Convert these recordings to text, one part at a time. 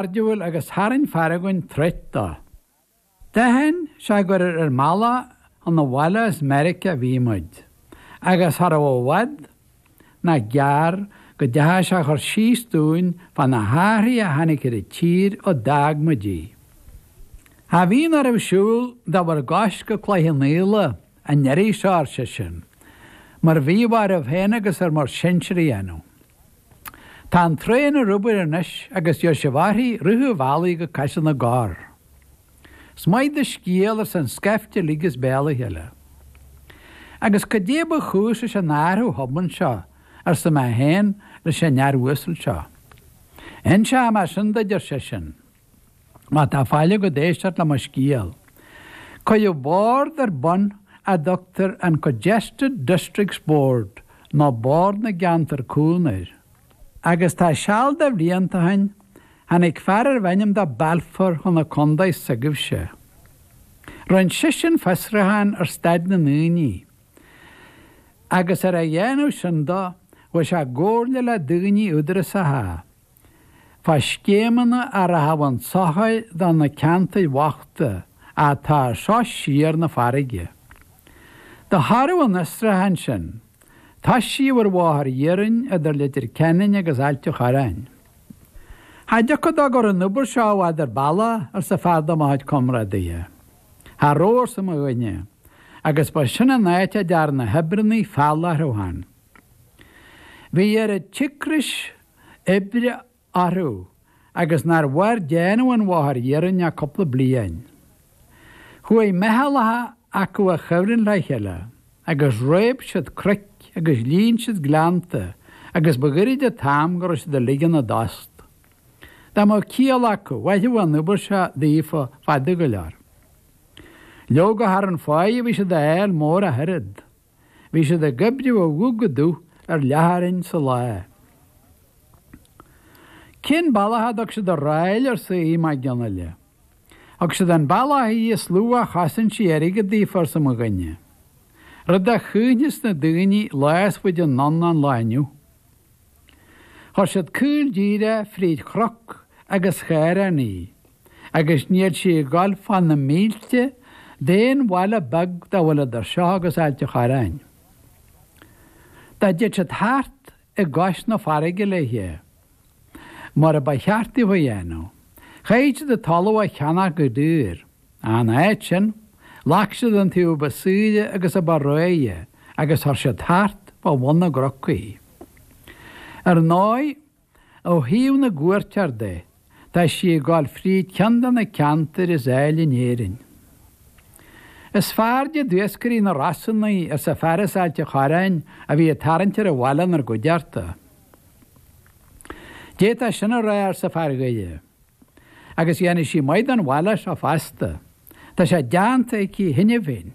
cairdiúil agus tharraing fear againn treat dó. D'aithin sé gur ar ár mbealach chun an bhaile as Meirice a bhí muid, agus cha rabh i bhfad nach gearr go dteachaigh sé a chur síos dúinn fá na hathruithe a tháinig ar an tír ó d'fhág muid í. Cha bhíonn oraibh siúl de bhur gcois go Cloich Cheannfhaola an iarraidh seo, ar seisean, mar bhíodh oraibh féin agus ar bhur sinsear a dhéanamh. Tá an traen ar obair anois agus beidh sibh uirthi i rith an bhealaigh go Caiseal na gCorr. Is maith do scéal arsa an scaifte uilig as béal a chéile. Agus cad é ba chúis leis an athrú thobann seo arsa mé féin leis an fhear uasal seo. Inseoidh mé sin duid ar seisean. Má tá faill agat éisteacht le mo scéal. Cuireadh bord ar bun a dtugtar an Congested Districts Board nó Bord na gCeantar Cúng air. Agus tá seal de bhlianta ó shin, tháinig fear arbh ainm dó Balfour chun na contae s'agaibhse. Rinne seisean fiosruchán ar staid na ndaoine. Agus ar a dhéanamh sin dó, chuaigh sé i gcomhairle le daoine údarasacha. Fá scéimeanna a rachadh chun sochair do na ceantair bhochta atá as seo siar chun na farraige. De thoradh an fhiosrúcháin sin. Toisíodh ar Bhóthar Iarainn idir Leitir Ceanainn agus Ailt an Chorráin. Cha dtiocfadh dó go rabh an obair seo i bhfad ar bealach arsa fear de mo chuid comrádaithe. Cha rabh arsa mo dhuine, agus ba sin an áit a dtearn na hoibríonnaí feall orthu féin. Bhí oiread cíocrais oibre orthu agus nár mhair déanamh an bhóthair iarainn ach cúpla bliain. Chuaigh meithleacha acu i gcuibhreann le chéile agus réab siad cnoic agus líon siad gleannta agus ba ghoirid an t-am go raibh siad ag ligean a dtost. Dá mbeadh ciall acu, mhairfeadh an obair seo daofa fada go leor. Leoga cha raibh an pháighe a bhí siad a fháil mór ach oiread. Bhí siad ag oibriú ó dhubh go dubh ar leathchoróin sa lá. Cén bealach a dtug siad an ráil arsa Aodh Mac Fhionnaile. Thug siad an bealach í is lú a chosain sí airgead daofa arsa mo dhuine. Rud a chuimhneos na daoine lá is faide anonn ná an lá inniu. Chuir siad caol díreach fríd chnoc agus ghleann í, agus níl sí ag dul fá na mílte d'aon bhaile beag dá bhfuil idir seo agus Ailt an Chorráin. Dá dtéadh siad thart i gcois na farraige léithe, mar a ba cheart daofa a dhéanamh, chaithfead siad an talamh a cheannach go daor. In áit sin, ghlac siad an taobh ba saoire agus a ba réidhe agus chuir siad thart fá bhun na gcnoc í. Ar ndóigh, ó thaobh na gcuairteoir de, tá sí ag gabháil fríd ceann de na ceantair is áille in Éirinn. Is fearrde d'iascairí na Rosann í, arsa fear as Ailt a' Chorráin a bhí ag tarraingt ar an bhaile 'nár gcuideachta. D'fhéadfá sin a rá, arsa fear Dhoire. agus dhéanfaidh sí maith don bhaile seo feasta. Tá sé déanta aici cheana féin.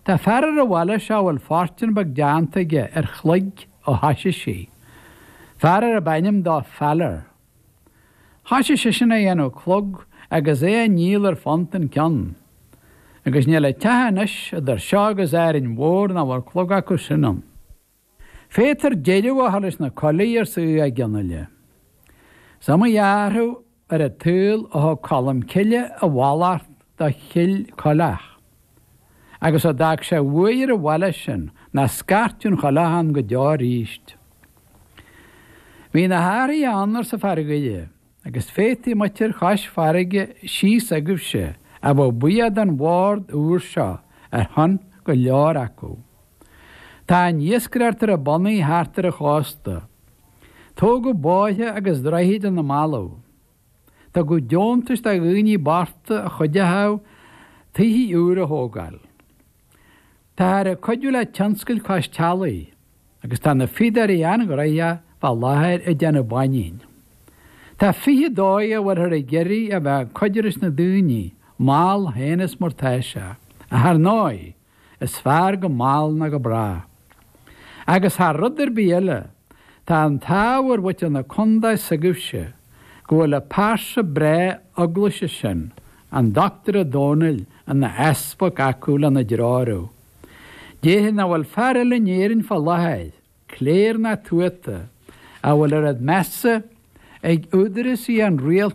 Tá fear ar an bhaile seo a bhfuil fortún beag déanta aige ar chloig ó thoisigh sí, fear arb ainm dó Faller. Thoisigh seisean a dhéanamh clog agus é a ndíol ar phunt an ceann. Agus níl aon teach anois idir seo agus Árainn Mhór nach bhfuil clog acu sin ann. Féadtar deireadh a chur leis na coiligh, arsa Aodh Mac Fhionnaile. Is iomaí athrú ar an tsaol ó thug Colm Cille a mhallacht do Chill Coileach, agus a d'fhág sé de bhuaidh ar an bhaile sin, nach scairtfeadh aon choileach ann go deo arís. Bhí na hathruithe ann, arsa fear Dhoire. Agus féadfaidh muintir chois farraige síos agaibhse a bheith buíoch don bhord úr seo ar shon go leor acu. Tá an iascaireacht ar a bonnaí thart ar an chósta. Tógadh bóithre agus droichid ina mballaibh. Tugadh deontais do dhaoine bochta a chuideochadh tighthe úra a thógáil. Táthar ag cuidiú le tionscail cois teallaigh agus tá na fíodóirí an-ghnoitheach fá láthair ag déanamh báinín. Tá fiche dóigh a bhfuilthear ag iarraidh a bheith ag cuidiú leis na daoine, mall féin is mar tá sé, ach ar ndóigh, is fearr go mall ná go bráth. Agus thar rud ar bith eile, tá an t-ádh ar mhuintir na contae s'agaibhse go bhfuil an pearsa breá Eaglaise sin, an Doctúir Ó Dónaill, ina Easpag acu lena dtreorú. Déarfainn nach bhfuil fear eile in Éirinn fá láthair, cléir ná tuata, a bhfuil oiread measa ag údarásaí an Rialtais,